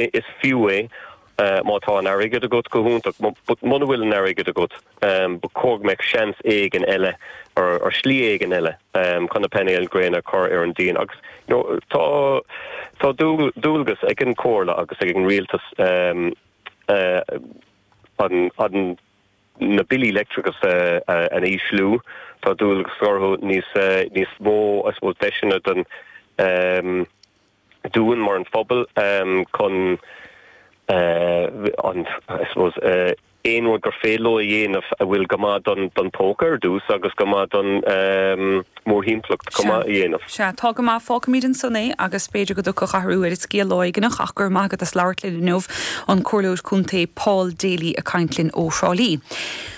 Is fiú é má tá an t-airgead agat, go hiontach, but muna bhfuil an t-airgead agat, ba chóir go mbeadh seans éigin eile or slí éigin eile chun na painéil ghréine a chur ar an díon agus tá dualgas ag an Chomhairle agus ag an Rialtas na billí leictreachais a ísliú, tá dualgas orthu níos mó, I suppose, deiseanna don. dúinn mar an phobal chun an I suppose aon rud gur féidir leo a dhéanamh a bhfuil go maith don don póca ar dtús agus go maith don mórthimpeallacht chomh maith a dhéanamh. Sea, tá go maith. Fágfaimid ansan é agus b'fhéidir go dtiocfadh athrú ar an scéal lá éigint ach go raibh maith agat as labhairt linn inniu. An Comhairleoir Contae Paul Daly ag caint linn ó Thrá Lí.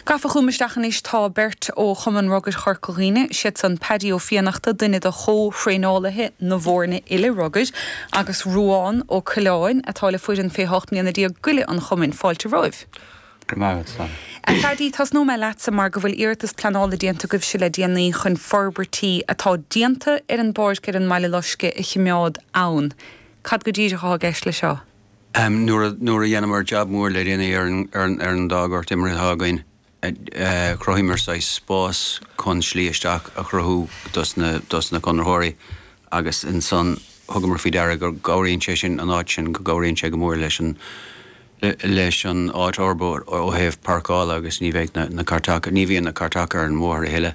Gafa chugam isteach anois tá beirt ó Chumann Rugair Chorca Dhuibhne, siad san Paddy Ó Fiannachta, duine de chomh-thraenálaithe na bhfóirne gile rugair, agus Ruán Ó Coileáin, atá le foireann fé ocht mbliana déag gile an chumainn. Fáilte romhaibh. Go raibh maith agat. A Phaddy, tosnóidh mé leatsa mar go bhfuil iarratas pleanála déanta agaibhse le déanaí chun forbairtí atá déanta ar an bpáirc ar an mBaile Loiscthe a chimeád ann. Cad go díreach atá i gceist leis seo? Nuair a dhéanamar jab mór le déanaí ar an dá gort imeartha atá againn, chruthaíomar saghas spás chun slí isteach a chruthú dos na conraitheoirí agus ansan thugamar faoi deara go gcabhraíonn sé sin, an áit sin, go gcabhraíonn sé go mór leis an áit a fhorbairt ó thaobh pairceála agus ní bheidh na cairteacha, ní bhíonn na cairteacha ar an mbóthar a thuilleadh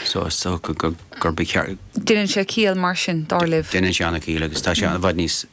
so is dócha gurb ceart. Deineann sé ciall mar sin, dar libh? Deineann sé ana-chiall agus tá sé i bhfad níos.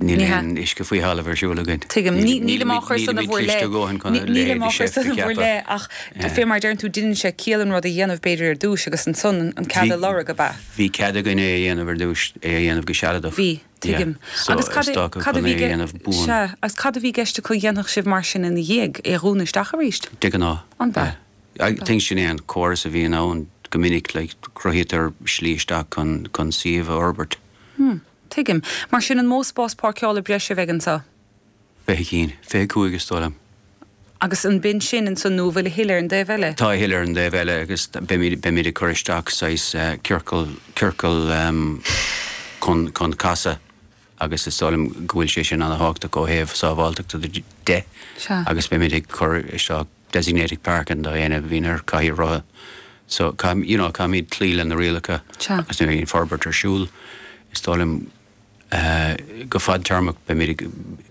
Níl aon uisce faoi thalamh ar siúl againn. Tuigim. Nílim á chur san in bhur leith. Nílim á chur san in bhur leith ach fé mar a deireann tú deineann sé ciall an rud a dhéanamh b'fhéidir ar dtúis agus ansan an cead a lorg, ab ea? Bhí cead againn é a dhéanamh ar dtúis, é a dhéanamh go sealadach. Bhí. Tuigim. So is dócha go mbeidh é a dhéanamh buan. Sea. Agus cad a bhí i gceist acu a dhéanfadh sibh mar sin ina dhiaidh? É a dhúnadh isteach arís? De ghnáth. Ab ea? I think sin é an córas a bhíonn ann go minic, like cruthaítear slí isteach chun suíomh a fhorbairt. Tuigim. Mar sin an mó spás páirceála breise a bheidh anseo? Fiche cinn. Fiche cúig is dóigh liom. Agus ab in san ansan nó an bhfuil a thuilleadh ar an dtaobh eile? Tá a thuilleadh ar an dtaobh eile agus beimid ag cur isteach saghas ciorcal chun casadh agus is dóigh liom go bhfuil sé sin an-thábhachtach ó thaobh sábháilteachta de agus beimid ag cur isteach designated parking do éinne a bhíonn ar cathaoir rotha so caithfidh you know caithfimid cloí leis na rialacha agus nuair a bhíonn forbairt ar siúl is dóigh liom go fadtéarmach beimid ag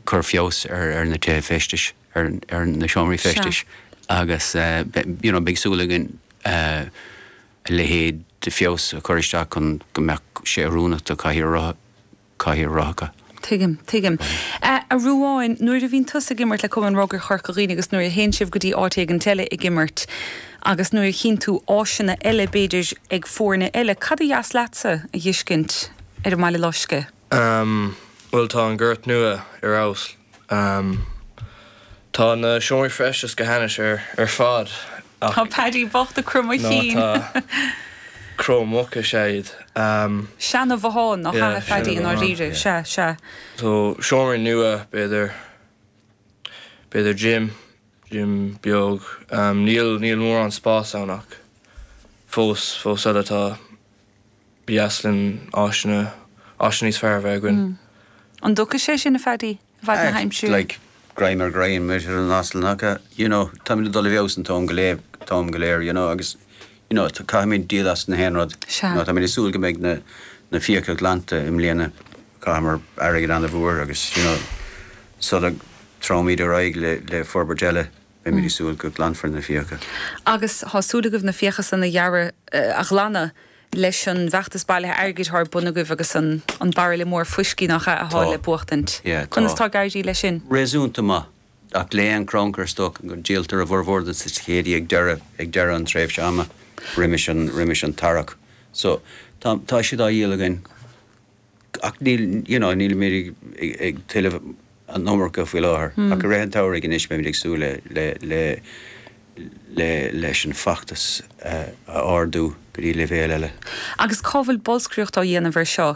cur feabhas ar ar na tithe feistis ar na seomraí feistis agus you know beidh súil againn a leithéid de feabhas a chur isteach chun go mbeadh sé oiriúnach do cathaoir rotha. Caithfidh a rá go. Tuigim, tuigim. A Ruáin, nuair a bhíonn tusa ag imirt le Cumann Rugby Chorca Dhuibhne agus nuair a théann sibh go dtí áit éigin eile ag imirt agus nuair a chíonn tú áiseanna eile b'fhéidir ag foirne eile, cad ba dheas leatsa a dh'fheiscint ar an mBaile Loiscthe? Bhuel tá an gort nua ar fheabhas Ahm. Tá na seomraí feistis go hainnis ar fad ach. Tá Paddy bocht ag croitheadh a chinn. Ná tá. Cró muc is ea iad. Ahm. Seana Bhothán ná hea a Phaddy i ndáiríre. Sea, sea. So seomraí nua b'fhéidir. B'fhéidir gym. Gym beag. Ahm níl, níl mórán spás ann ach fós, fós féin tá. Ba dheas linn áiseanna, áiseanna níos fearr a bheith againn. Mm. An dtiocfadh sé sin, a Phaddy? I bhfaid na haimsire? Like, greim ar ghreim, a mharaíonn an t-asal an aca, you know, táimid ag dul i bhfeabhas an t-am go léir, t-am go léir, you know, agus, you know, caithfimid díol as gach aon rud. Sea. You know, táimid ag súil go mbeidh na, na fiacha glanta i mbliana. Chaitheamar airgead ana-mhór agus, you know, sula dtéimid ar aghaidh le, le forbairt eile. Beimid ag súil go glanfar na fiacha. Agus thá súil agaibh na fiacha san a dhearadh, a ghlanadh leis an bhfeachtas bailithe airgid thá ar bun agaibh agus an bairille mór fuiscí nach ea a Tá. fháil le buachtaint. Yeah, tá. Conas tá ag éirí leis sin? Réasúnta maith. Ach le haon chrannchur is dócha díoltar a bhformhór des ticéidí ag deireadh ag deireadh an tréimhse ama roimis an roimis an tarrac. So, tá tá siad á dhíol againn. ach níl, you know, nílimid ag tuilleamh an iomarca faoi láthair, ach i rith an tsamhraidh anois beimid ag súil le, le, le, le, leis an bhfeachtas a ardú go dtí leibhéal eile. Agus cá bhfuil bolscaireacht á dhéanamh ar seo?